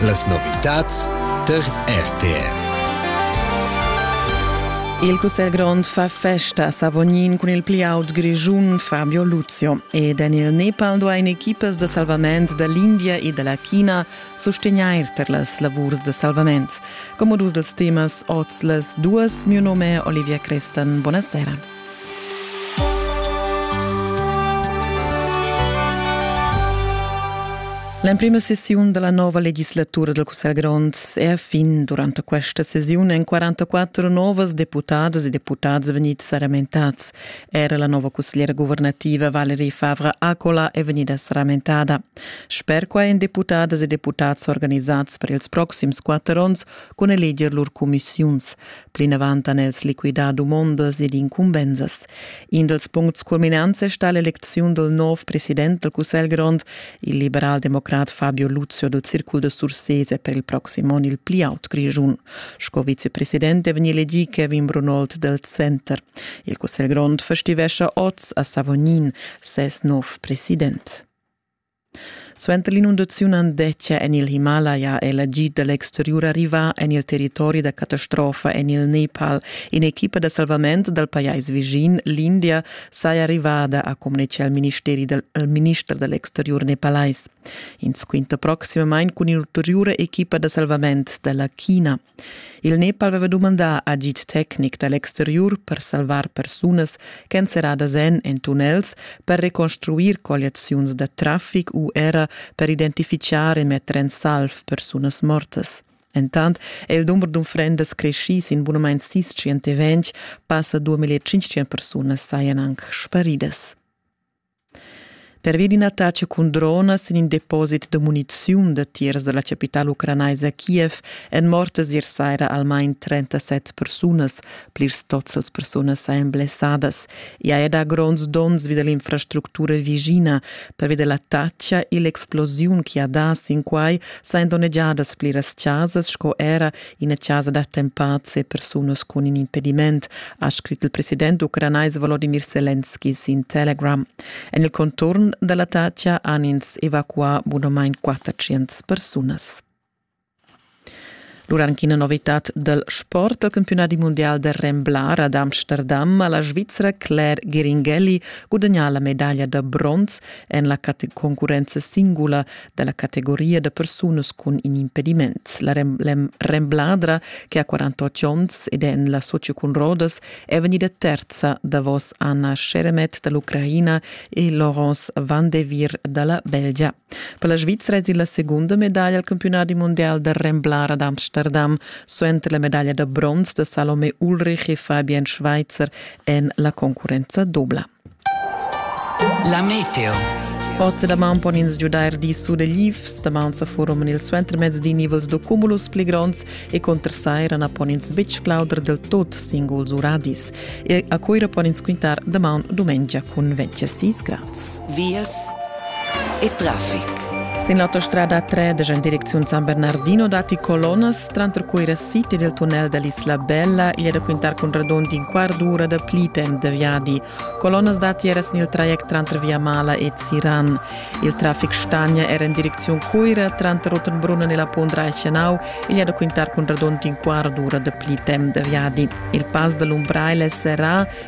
Las novitads tar RTR. Il Cussegl grond fa festa a Savognin cun il pli aut grischun Fabio Luzio ed en il Nepal duain equipas da salvament da l'India e da la China sustegnair tar las lavurs da salvament. Come dus dels temas oz les duas, mio nome è Olivia Crestan. Buonasera. L'emprima sessiun della nova legislatura del Cussegl grond è a fin. Durante questa sessione en 44 novas deputadas e deputads venit saramentats. Era la nova consigliera governativa Valerie Favre Acola è venida saramentada. Sper qua en deputadas e deputats organizats per ils proxims quatter onns con eleger lur commissiuns. Plinavant han els liquidà dumondas ed incumbensas. In dals puncts culminants è stà l'elecziun dal nov president dal Cussegl grond, il liberaldemocrat Fabio Luzio dal Circul da Sursese per il proxim onn il pli aut Grischun. Sco vicepresident è vegnì elegì Kevin Brunold dal Center. Il Cussegl grond festivescha oz a Savognin ses nov president. Suenter l'inundaziun Andetgia en il Himalaja è l'agid da l'exteriur arrivà en il territori da catastrofa en il Nepal. In'equipa da salvament dal pajais vischin, l'India, saja arrivada, ha communitgà il minister da l'exteriur nepalais. Ins quinta proximamain cun un'ulteriura equipa da salvament da la China. Il Nepal aveva dumandà agid tecnic da l'exteriur per salvar persunas ch'èn serradas en en tunnels, per reconstruir colliaziuns da traffic u era per identifichar e metter en salv persunas mortas. Entant è il dumber d'unfrendas creschì sin bunamain sis tschient e ventg, passa 2500 persunas sajan anc sparidas. Pervia d'ina taxa cun dronas en in deposit da muniziun datiers da la chapitala ucranaisa Kiev èn mortas ier saira almain 37 persunas. Plirs tots las persunas sajan blessadas. I haja dà gronds donns vi da l'infrastructura vischina. Pervia da la taxa e l'explosiun che ha dà sin quai sajan donnegiadas pliras chasas sco era ina chasa d'attempads e persunas cun in impediment, ha scrit il president ucranais Volodymyr Selenski sin Telegram. En il conturn da l'Atacha han ins evacuà bunamain 400 persunas. Durant ina novitad dal sport al campionat mundial da Remblar ad Amsterdam ha la Svizra Claire Geringelli gudagnà la medaglia da bronz en la concurenza singula dalla categoria da persunas cun in impediments. La rembladra, che ha 48 onns ed è en la socio cun Rodas, è vegnida terza davos Anna Sheremet dall'Ucraina e Laurence van de Vier dalla Belgia. Per la Svizzera è la segunda medaglia al campionat mondial da remblara d'Amsterdam suenter la medaglia da bronz da Salome Ulrich e Fabian Schweitzer en la concurenza dobla. La meteo. Oz da maun pon ins giudair dis suleglivs, damaun sa furoman il suentermezz di nivels da cumulus pli gronds e conter saira na pon ins betg clauder del tot singuls uradis. E a Cuira pon ins quintar damaun dumengia cun 26 grads. Vias e traffic. Sin l'autostrada 3 en direcziun San Bernardino datti colonnas Tranter Cuira City del tunnel dall'Isla Bella igl è da quintar cun radund in quart d'ura da pli temp da viadi. Colonnas datiers nel traject tranter Viamala e Ziran. Il traffic stagna era in direcziun Cuira, tranter Rottenbrunn e la Pont Reichenau igl è da quintar cun radund in quart d'ura da pli temp da viadi. Il pass dall'Umbrail è serrà